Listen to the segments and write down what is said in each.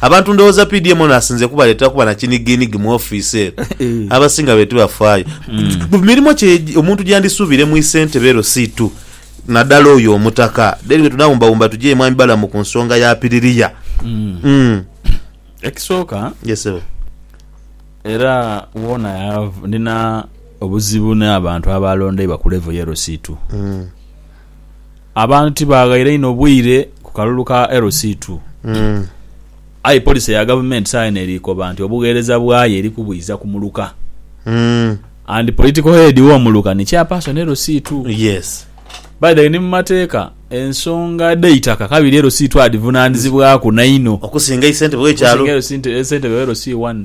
Abantu ndhoghoza pi DMO n'asinze kubaleetera kuba na kinigiinigi mu ofiisi eno? Abasinga be tibafaayo ku mirimo kye omuntu gyandisuubire mu isentebe ero si tu nadala oyo omutaka. Then bwe tunaawumbawumba tugyeyo Mwami Balamu ku nsonga ya Piriria. Umm. Ekisooka Yes ssebo. era woona yav- ndina obuzibu n'abantu abaalondeibwa ku level y'ero si tu. abantu tibaaghaire inho bwire ku kalulu ka LC2. Aye poliisi ya gavumenti saagha eno eri koba nti obugheereza bwayo eri kubwiiza ku muluka and political head w'omuluka ni chairperson LC2. Yes. By the way, ni mu mateeka ensonga dh'eitaka kabiri LC2 adhivunaanizibwaku nainho Okusinga eisentebe w'ekyalo. okusinga LC ssentebe wa LC1.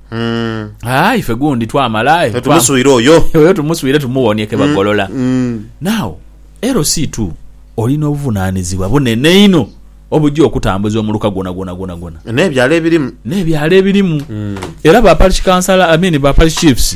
Aa, ife gundi twamala. Aye twa- Tumuswire oyo. oyo tumuswire tumuwonie ke bagolola. Now, LC ii oli n'obuvunaanizibwa bunene inho obugya okutambuza omuluka gwona gwona gwona gwona N'ebyalo ebirimu. n'ebyalo ebirimu. Era ba parish councillor, I mean ba parish chiefs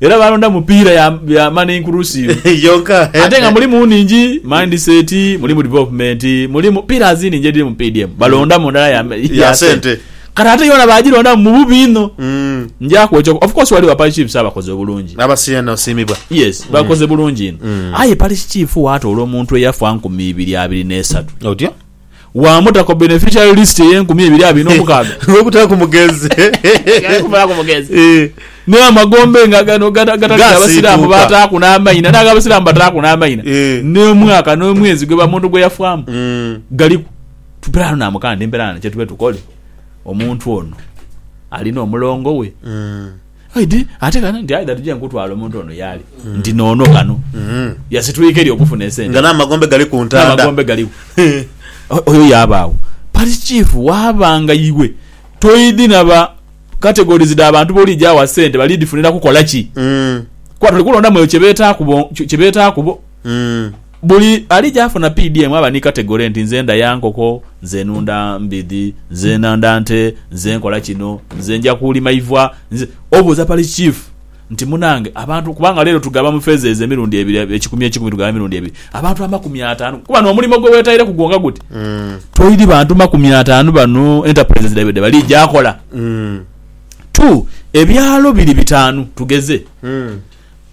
Era baalonda mu piira ya, ya mani inkurusiivu. Yonka. Ate nga mulimu nhingi, mindset, mulimu development, mulimu pillars nhingi edhiri mu PDM. Balondamu ndala ya, ya, Ya sente. sente. Kati ate yoona baagilondamu mu bubi inho. Mm. Nja kwokya oku, of course ghaligho Parish Chiefs abakoze obulungi. Aba Siena osiimibwa. Yes, bakoze bulungi inho. Aye Parish Chief waatoola omuntu eyafa nkumi ibiri abiri n'esatu. Otyo. wa muta ku beneficiary list ey'enkumi ebiri abiri n'omukaaga. Olw'obutaaku mugezi. Ghaire kumulaaku mugezi. Eeh. Naye amagombe nga gano gata, gatalina Abasiraamu Gaasiituuka. b'ataaku n'amaina, n'ag'Abasiraamu b'ataaku n'amaina, Eeh. n'omwaka n'omwezi gwe ba muntu gwe yafaamu Mm. galiku. Mperaano naamugamba nti, Mperaano kye tube tukole, omuntu ono alina omulongo we. Mm. Oidhi ate kano nti aidha tuje nkutwale omuntu ono yaali nti noono kano yasitwika eri okufuna esente. Nga n'amagombe gali ku ntanda. N'amagombe galiku. Oyo yaabaawo parish chief waaba nga iwe toidhi na ba categories dha bantu b'oliija agha sente bali dhifunira kukola ki? Kuba toli kulondamu eyo kye beetaaku bo, kye beetaaku bo. Buli ali gy'afuna piidi emu aba ni kategole nti nze ndaya nkoko, nze nunda mbidhi, nze nanda nte, nze nkola kino, nze nja kuulima iva, nze. Obuuza Parish Chief nti munange abantu kubanga leero tugaba mu phases emirundi ebiri ekikumi ekikumi tugaba emirundi ebiri abantu amakumi ataanu kuba n'omulimo gwe weetaireku gwo nga guti toili bantu makumi ataanu bano enterprises dhaibwe dhe bali gyakola? Two, ebyalo biri bitaanu tugeze.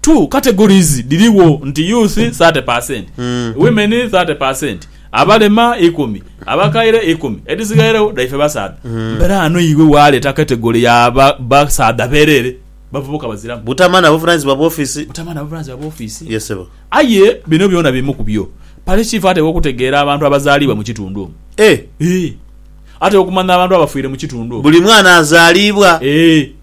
Two categories dhirigho nti youth thirty percent, women thirty percent, abalema ikumi, abakaire ikumi, edhisigaireo dhaife basaadha. Mbela ghano iwe waleeta category ya ba, basaadha bereere, bavubuka baziramu. Butama na buvunanyizibwa bwa office. Butama na buvunanyizibwa bwa office. Yes sebo. Aye bino byona bimu ku byo Parish Chief ateekwa okutegeera abantu abazaalibwa mu kitundu omwo. Eh! Eeh. Ateekwa okumanya abantu abafiire mu kitundu omwo. Buli mwana azaalibwa. Eeh.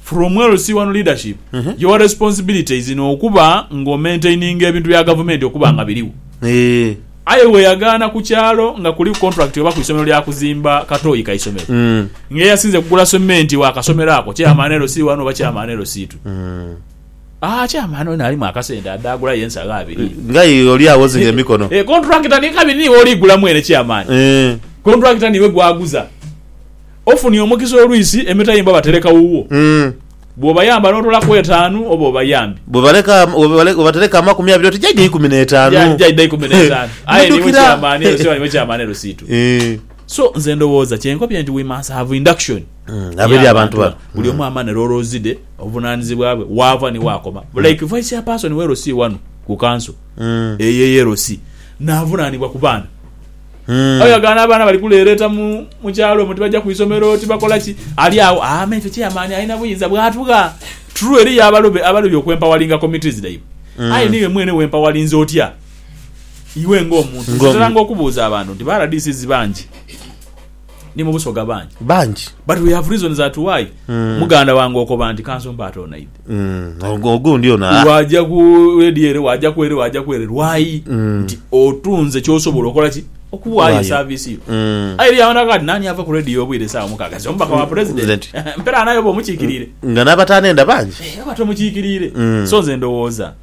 From LC1 Leadership, your responsibility is in okuba nga omaintaininga ebintu bya gavumenti okuba nga birigho. Eeh. Aye bweyagaana ku kyalo nga kuliku contract oba ku isomero lya kuzimba katoyi ka isomero, nga eyasinze kugula cement wa kasomero ako chairman LC1 oba chairman LC2. Aah chairman ono alimu akasente adde agulayo ensagho abiri. Nga aye oli awozinga emikono. Eeh contractor ni kabiri niwe oli gula mwene chairman. Eeh. Contractor niwe gwaguza. Ofunye omukisa olwisi emitayimbwa batereka wuwo. Bw'obayamba n'otolaku etaanu oba obayambye. Bw'obatereka amakumi abiri oti jaidha eikumi n'etaanu. Jaidha eikumi n'etaanu. Aye niwe kyamaani ero siba niwe kyamaani ero siitu. So nze ndowooza kye nkobye nti we must have induction y'abantu bano buli omu amane roles dhe, obuvunaanizibwa bwe, waava ni waakoma. Like Vice Chairperson we LC wano ku kanso eyo eye LC n'avunaanibwa ku baana. Hmm. Aye agaana abaana bali kuleereeta mu, mu kyalo omwo, tibaja ku isomero, tibakola ki, ali agho, aa, me ife chairman alina buyinza bw'atugha. True, eriyo abalobe abalobi okwempawalinga committees dhaibwe. Hmm. Aye niiwe mwene wempawalinze otya iwe ng'omuntu? Nze Ng'omu- nteranga okubuuza abantu nti ba RDCs bangi. Ni mu busoga bangi. Bangi. But we have reasons that why mm. muganda wange okoba nti kanso mpaate onaidhe. Mm. Ogundi ono. Ah. Waja ku radio ere, waja ku ere, waja ku ere. Lwayi mm. nti otunze kyosobola okola ki? okuwayo service yo mm. ayi ya wana kati nani ava ku radio obwire sawa mukaga zo mbaka wa president mpera nayo bo mukikirire nga nabatane nda bangi eh, abato mukikirire mm. so nze ndowoza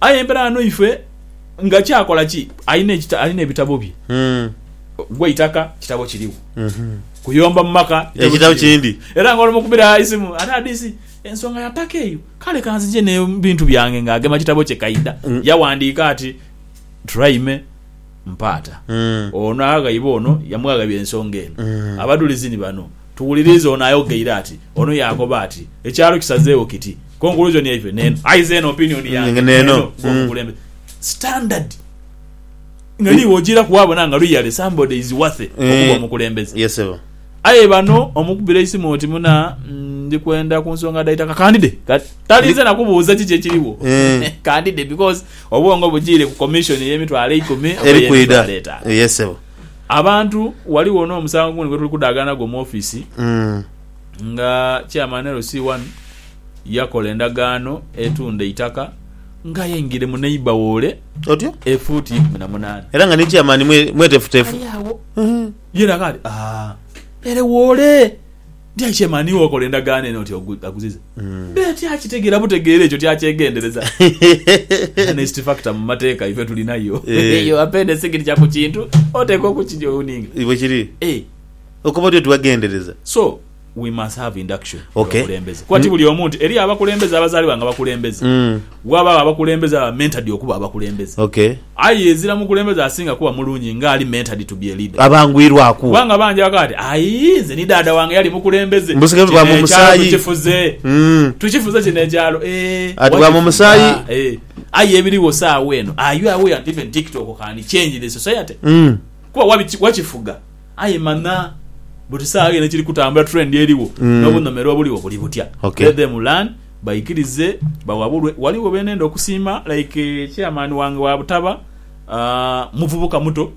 Aye embera ghano ife nga kyakola ki alina ekita alina ebitabo bye gwe itaka kitabo kirigho kuyomba mu maka ekitabo kindi era nga olumu kubira isimu ate adisi ensonga ya taka eyo kale kanzije ne bintu byange nga agema kitabo kye kaida yawandika ati Turaime mpaata ono aghaiba ono yamwaghaibya ensonga eno abadulizi ni bano tuwulirize ono ayogeire ati ono yakoba ati ekyalo kisazegho kiti. Conclusion yaiffe neeno. Aye nze eno opinion yange neeno kuba mukulembeze standard nga niiwe ojiiraku wabona nga really somebody is worthy okuba omukulembeze. Yes sebo. Aye bano omukubira eisimu oti muna ndikwenda kunsonga dhaitaka kandide kati talinze nakubuuza kiki ekiriwo kandide because obwongo bujiire ku commission eyemitwalo eikumi oba eyemitwalo etaano. Yes sebo. Abantu waliwo nomusango gundi gwetuli kudhaaganagwo mu office. nga chairman LC wanu yakola endagaano etunda eitaka nga aye ngire mu neighbour wole Otyo? efuuti ikumi na munaana. Era nga ni chairman mwe- mwetefutefu. Ali agho Mhm. yena nga ati aa ere wole nti aye chairman iwe wakola endagaano eno oti ogu- aguziza mbeere tyakitegera butegeera ekyo tyakyegendereza. Honest factor mu mateeka ife tulinayo Eh. eyo apendesi giri kya ku kintu oteekwa okukijowuninga. Bwekiri. Eh. Okuva oti otibaghendereza. So we must have induction mu okay. bakulembeze kuba ti buli omu nti eriyo abakulembeze abazalibwa nga bakulembeze mm. wabagho abakulembeze aba mentored okuba abakulembeze okay. Aye ezira mukulembeze asinga kuba mulungi nga ali mentored to be a leader abangwirwaku kubanga bangi abakoba ti aii nze ni daada wange yali mukulembeze kino ekyalo tukifuze mm. tukifuze kino ekyalo eh, ati bwa mumusayi ah, eh. Aye ebiriwo saawa eno are you aware and even TikTok can change the society mm. kuba wakifuga Aye manha buti saagha eno ekiri kutambula, trend erigho, n'obunhomerwa obuligho buli butya. Okay. Let them learn, baikirize, bawabulwe. Ghaligho be nenda okusiima like chairman wange wa Butaba, aah, muvubuka muto,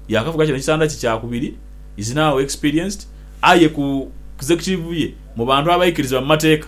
yaakavuga kino ekisanda kye kya kubiri, is now experienced, aye ku Executive ye mu bantu abaikiriza mu mateeka.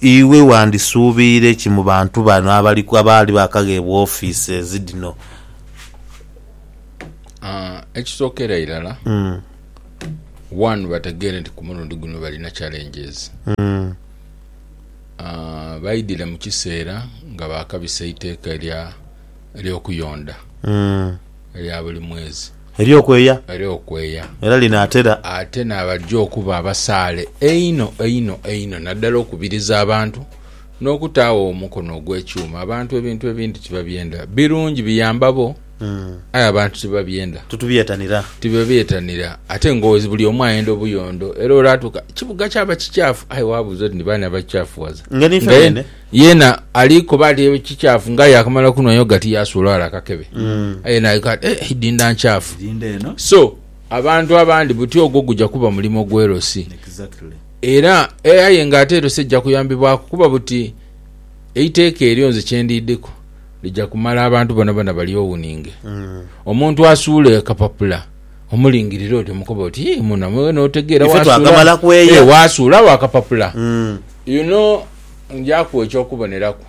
Iwe wandisuubiire ki mu bantu bano abali abaali baakagheebwa ofiises dhino? Ekisookera irala, one bategeere nti ku mulundi guno balina challenges. Baidhire mu kiseera nga baakabisa eiteeka ery'okuyonda. Erya buli mwezi. Ery'okweya. Ery'okweya. Era linaatera. Ate n'abajja okuba abasaale einho einho einho naddala okubiriza abantu n'okutaagho omukono ogw'ekyuma. Abantu ebintu ebindi tibabyenda. Birungi, biyamba bo, aye abantu tibabyenda. Titubyetanira. Tibabyetanira. Ate nga buli omu ayenda obuyondo era olwatuuka, ekibuga kyaba kikyafu aye wabuuza oti ni baani abakikyafuwaza? Nga niife beene. Yeena ali koba ati ekikyafu nga yakamala kunwa yogati yasuula wala akakebe. Mm. Aye naika ati eh idinda nkyafu. Dinda eno. So abantu abandi buti ogwo guja kuba mulimo gwelosi. Exactly. Era eh aye nga ate elosi ejja kuyambibwaku kuba buti eiteka elyo nze kyendidiku lija kumala abantu bonabona bali owuninge. Mm. Omuntu asuula akapapula omulingirira oti omukoba oti yii muna mwe notegera Ife wasuula twakamalakweya. eh wasuula wo akapapula. Mm. You know Nja kuwa eky'okuboneraku.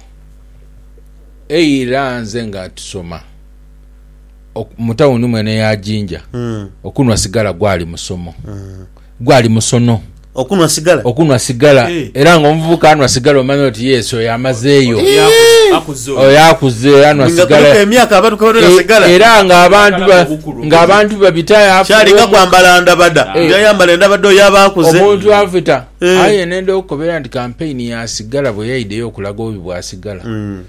Eira nze nga tusoma mu tawuni mwene ya Jinja, okunhwa sigala gwali musomo, gwali musono. Okunhwa sigala? Okunhwa sigala. Era ng'omuvubuka anhwa sigala omanya oti yes oyo amazeeyo. Oyo akuze anhwa sigala. Nga kuliku emyaka abantu kwe banhwera sigala. Era ng'abantu babita. Kyali nga kwambala ndabada, nti ayambala endabada oyo aba akuze. Omuntu afita. Aye nenda okukobera nti kampeyini yaasigala bwe yaidheyo okulaga obubi bw'asigala.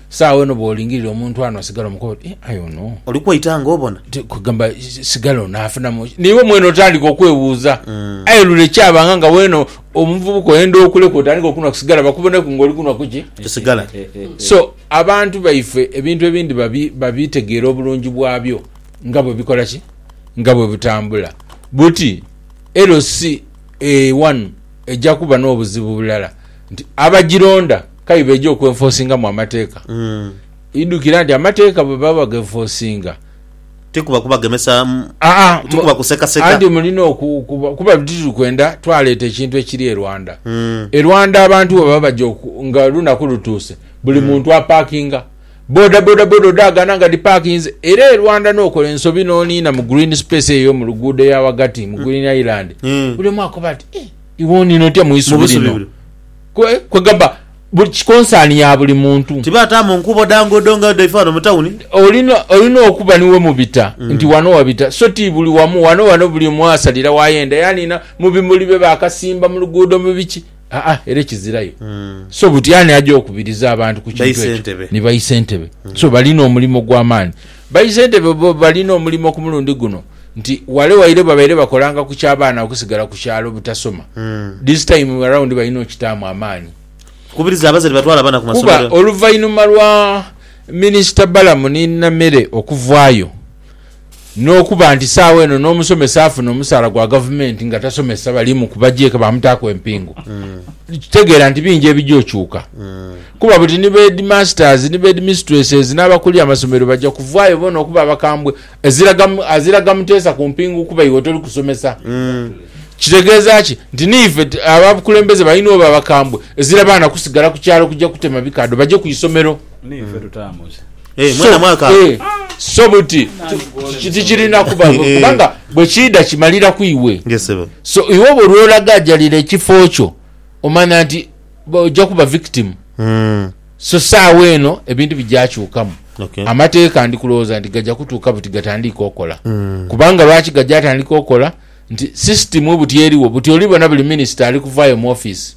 Saagho eno bw'olingirira omuntu ano asigala omukoba oti, Eh, aye ono. Oli kwaita nga obona. Ti kugamba sigala ono afunamu ki? N'iwe mwene otandika okwebuuza. Aye lule kyabanga nga weena omuvubuka oyenda okuleka otandike okunwa ku sigala bakuboneku ng'oli kunwa ku ki? Ku sigala. So, abantu baife ebintu ebindi babi, babitegeera obulungi bwabyo nga bwe bikola ki? Nga bwe butambula. Buti LC. Eeh wano eja kuba n'obuzibu bulala nti abagironda kabi beja okwenfosingamu amateeka. Idhukira nti amateeka bwe baba bagenfosinga. Ti kuba kubagemesa, Aa, ti mu- kuba kusekaseka. anti mulina oku- okuba- kuba buli tituli kwenda twaleeta ekintu ekiri e Rwanda. E Rwanda abantu bwe baba baja oku- nga olunaku lutuuse buli muntu apakinga. Boda boda boda odhaagana nga dhipakinze era e Rwanda n'okola ensobi n'oniina mu green space eyo mu luguudo eya ghagati mu Green Island buli omu akoba ati eh iwe oniina otya mu isubi lino? Kwe kwegamba buli concern ya buli muntu. Tibataamu nkuubo dha nguudo nga dhaife ghano mu tawuni. Olina olina okuba ni wemubita nti wano wabita so ti buli wamu. Wano wano buli omu asalira w'ayenda yaniina mu bimuli bye baakasimba mu luguudo mu biki. Aa era kizirayo mm. so buti ani aja okubiriza abantu ku kintu ekyo ni baisentebe mm. so balina omulimo gwa maani baisentebe bo balina omulimo ku mulundi guno nti wale waire babaire bakolanga ku kyabaana okusigala ku kyalo butasoma mm. this time around balina okitaamu amaanyi kubiriza abazadde batwala abaana ku masomero kuba oluvainuma lwa minisita balamu ni namere okuvaayo N'okuba nti saagho eno n'omusomesa afuna omusaala gwa gavumenti nga tasomesa bali mu ku bagyeka bamutaaku empingu, tegeera nti bingi ebija okyuka. Kuba buti ni beedimasitazi ni beedimisitureses n'abakulira amasomero baja kuvaayo boona okuba abakambwe aziraga muteesa ku mpingu kuba iwe toli kusomesa. Kitegeeza ki? Nti niife abakulembeze balina oba abakambwe ezira baana kusigala ku kyalo kuja kutema bikaadho baje ku isomero. Niife tutaamuze. So buti tikirina kuba, kubanga bwe kiidha kimalira ku iwe. So iwe oba olwolagaajalira ekifo kyo omanya nti oja kuba victim. So saawa eno ebintu bija kyukamu. Amateeka ndi kulowooza nti gaja kutuuka buti gatandiike okola. Kubanga lwaki gaja atandika okola nti system buti eriwo buti olibona buli minister ali kuvaayo mu office.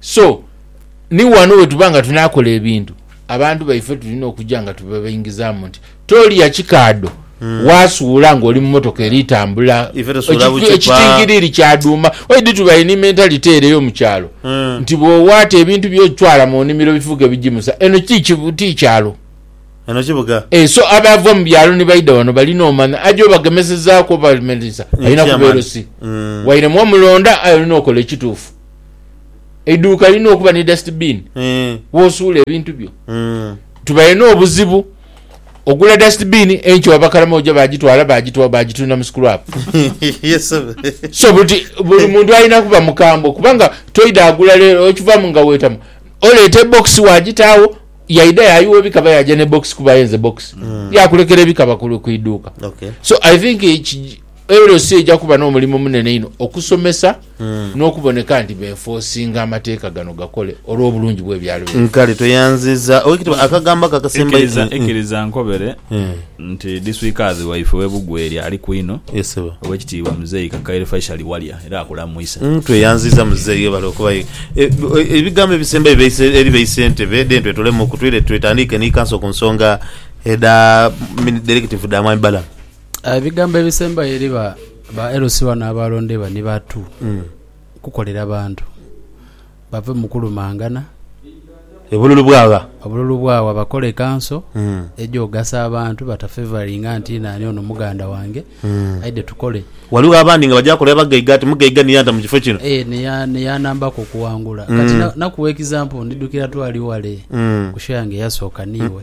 So, ni ghano bwe tuba nga tunaakola ebintu, abantu baife tulina okuja nga tubabaingizaamu nti, Tolya kikaadho hmm. waasuula ng'oli mu mmotoka eri tambula, ekitingiriiri kya dhuuma. Why do tuba any mentality ere yo mu kyalo hmm. nti bw'owaata ebintu byo otwala mu nnimiro bifuuke bigimusa? Eno ti kyalo. Eno kibuga. Eh, so abava mu byalo ni baida wano balina omanya aja obagemesezaaku obamelisa alina kubeera osi. Hmm. Waire mwomulonda aye olina okola ekituufu. eiduuka lirina okuba ni dustbin eh. wosuula ebintu byo mm. tubaire n'obuzibu ogula dustbin enkyo waba karamoja bagitwala bagitwa bagitunda mu scrap yes, so buti buli muntu alina kuba mukambwe kubanga toida agula lero okivamu nga wetamu oleeta ebox wagitaawo yaida yayiwa ebikaba yaja ne box kuba yenze box mm. yakulekera ebikaba ku iduuka okay. so i think ero si eja kuba n'omulimu munene ino okusomesa n'okuboneka nti beenfoosinga amateeka gano gakole olw'obulungi bw'ebyalo byaibwe. Nkale tweyanziza Oweekitiibwa akagambo ako akasembayo. Ikiriza nkobere nti diswikazi waife owe Bugweri aliku inho, Oweekitiibwa Muzei Kakaire Faishali Walya era akulamwisa. Tweyanziza Muzei webale okubayo. Ebigambo ebisembayo byaise eri ba Isentebe then twetolemu ku twaire twetandiike ni Kanso ku nsonga edha Dairekitivu dha Mwami Balaam. Aye ebigambo ebisembayo eri ba LC bano abalondebwa ni batu kukolera bantu, bave mu kulumangana, Obululu bwagha. obululu bwagha, bakole ekanso egyogasa abantu batafevaringa nti nani ono muganda wange aidhe tukole. Ghaligho abandi nga baja kolera bagaiga ati mugaiga niye anta mu kifo kino. Eh, niya- niyanambaku okuwangula. Kati na- nakuwa example, ndidhukira twali wale ku show yange eyasooka niiwe.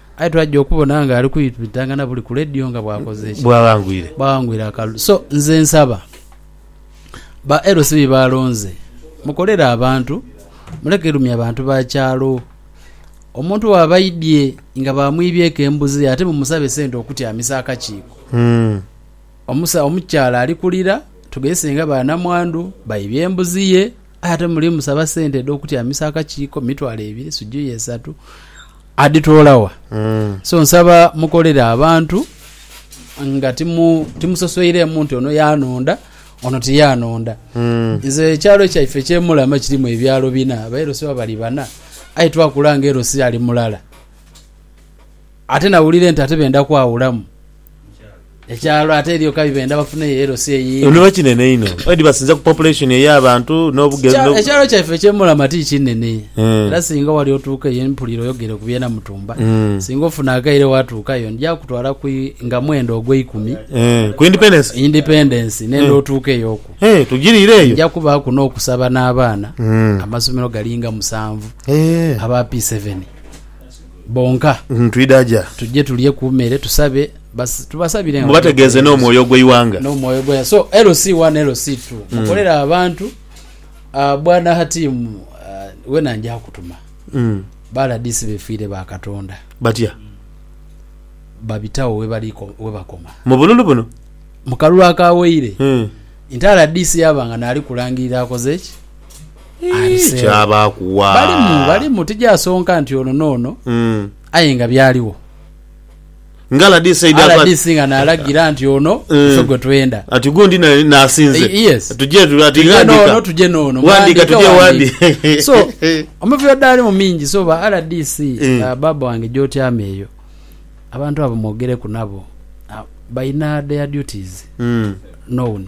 Aye twaja okubona nga ali kwitwitanga na buli ku radio nga bwakoze ki? Bwawangwire. Bwawangwire akalulu. So nze nsaba ba LC be balonze mukolere abantu muleke lumya bantu ba kyalo. Omuntu bwaba aidye nga bamwibyeku embuzi ye ate mumusabe sente okutyamisa akakiiko. Mm. Omusa omukyala ali kulira tugezese nga ba namwandu baibye embuzi ye. Aye ate muli musaba sente edhokutyamisa akakiiko mitwalo ebiri sijui esatu adhitoola wa? So nsaba mukolere abantu nga timu timusosoireemu nti ono yanonda ono tiyanonda. Nze ekyalo kyaife ekye Mulama kirimu ebyalo bina, aba LC baba bali bana aye twakula nga LC ali mulala. Ate nawulira nti ate benda kwawulamu ekyalo, ate eriyo kabi benda bafuneyo elosi eyindi. Niba kinene inho edi basinza ku population ey'abantu n'obugezi no. Ekyalo kyaife ekye Mulama ti kinene era singa wali otuuka eyo mpulira oyogere ku bye Namutumba, singa ofuna akaire watuukayo ndya kutwala ku nga mwenda ogw'eikumi ku independence independence nenda otuuka eyo oku tugiriire eyo nja kubaaku n'okusaba n'abaana amasomero galinga musanvu aba P seven. bonka. Twidha gya? Tujje tulye ku mere, tusabe, basi tubasabire nga Mubategeeze n'omwoyo gw'eighanga. N'omwoyo gw'eighanga. So LC one, LC two, mukolere abantu. Bwana Hatim, wena nja kutuma. Ba rdc befiire ba Katonda. Batya? Babitagho webakoma. Mu bululu buno? Mu kalulu akawaire. Nti rdc yaba nga n'ali kulangirira akoze ki? abiseegho. Balimu, balimu, tijaasonka nti ono n'ono, aye nga byaligho. Nga rdc eidha kuba nti. Rdc nga naalagira nti ono ife gwe twenda. Ati gundi naye naasinze. Yes. Tuje tule ati ghandika. Tuje n'ono, tuje n'ono. Ghandika tuje wandi. So, omivuyo dhaalimu mingi. So, ba rdc, baaba wange gy'otyama eyo, abantu abo mwogereku nabo, balina their duties known.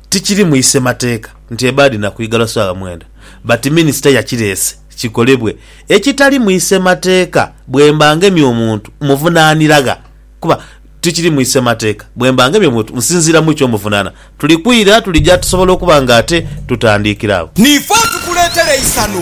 Tikiri mu isemateeka nti ebaadi na kwiga lwa saala mwenda but minisita yakireese kikolebwe ekitali mu isemateeka bwemba ngemye omuntu muvunanira gha kuba tikiri mu isemateeka bwemba ngemye omuntu nsinziira mu ky'omuvunana tuli kwira tulija tusobola okuba nga ate tutandiikira agho. Niife atukuleetera eisanhu.